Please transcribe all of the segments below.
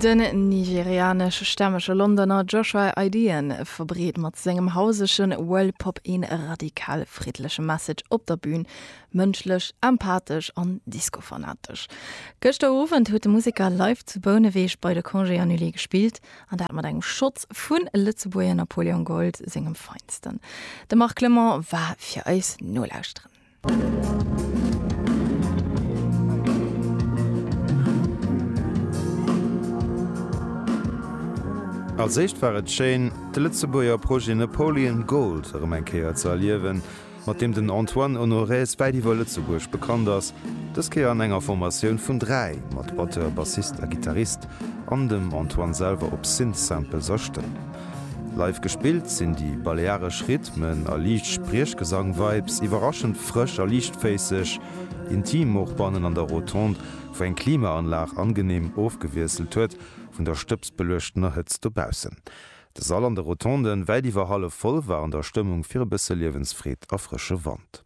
Den nigerianesch-stämmege Londoner Joshua Ideon verbreet mat sengem hausege World Pop ee radikal friddleche Message op der Bün, mënschlech, empathesch an Disco-fanatesch. Gëschter Owend huet de Museker live zu Bouneweg bei de Congés Annulés gespillt, an dat mat engem Shot vu Lëtzebuerger Napoleon Gold sengem Feinsten. De Marc Clement war fir eis nolauschteren. Als éischt war et schéin, de Lëtzebuerger Projet Napoleon Gold erëm eng Kéier ze erliewen, mat deem den Antoine Honorez wäit iwwer Lëtzebuerg bekannt ass, dës Kéier an enger Formatioun vun dräi, mat Batteur, Bassist a Gittarist, an dem Antoine selwer op Synth-Samples a Stëmm. Live gespillt sinn déi balearesch Rhythmen a liicht Spriechgesang-Vibes iwwerraschend frësch a liichtféisseg, intim och bannen an der Rotonde, wou eng Klimaanlag angeneem ofgewiesselt huet vun der stëbsbeluechtener Hëtzt dobaussen. De Sall an de Rotonden, wäit iwwer hallef voll, war an der Stëmmung fir e bësse Liewensfreed a frësche Wand.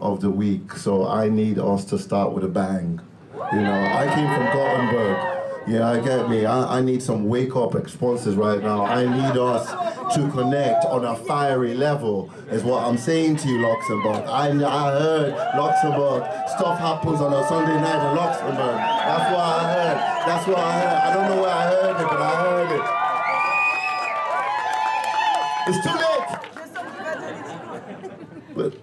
of the week so I need us to start with a bang you know I came from Gothenburg yeah I get me I need some wake up exponses right now I need us to connect on a fiery level is what I'm saying to you Luxembourg I heard Luxembourg stuff happens on a Sunday night in Luxembourg that's what I heard that's what I heard I don't know where I heard it but I heard it it's too late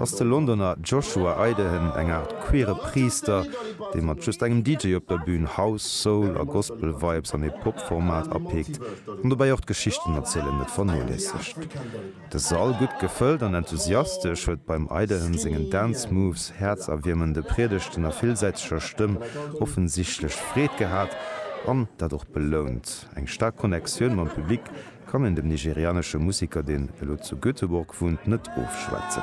ass de Londoner Joshua Idehen eng Aart queere Priister, dee mat just engem DJ op der Bün House, Soul a Gospel Vibes an ee Pop-Format apeekt an dobäi och d'Geschichtenerzielen net vernoléissegt. De Sall, gutt gefëllt an enthusiastesch, huet beim Idehen sengen Dance Moves, häerzerwiermende Priedegten a villsäiteger Stëmm offensichtlech Freed gehat an dat och belount. Eng staark Connectioun mam Public. kann een dem nigerianesche Museker, deen elo zu Göteborg wunnt, net ofschwätzen.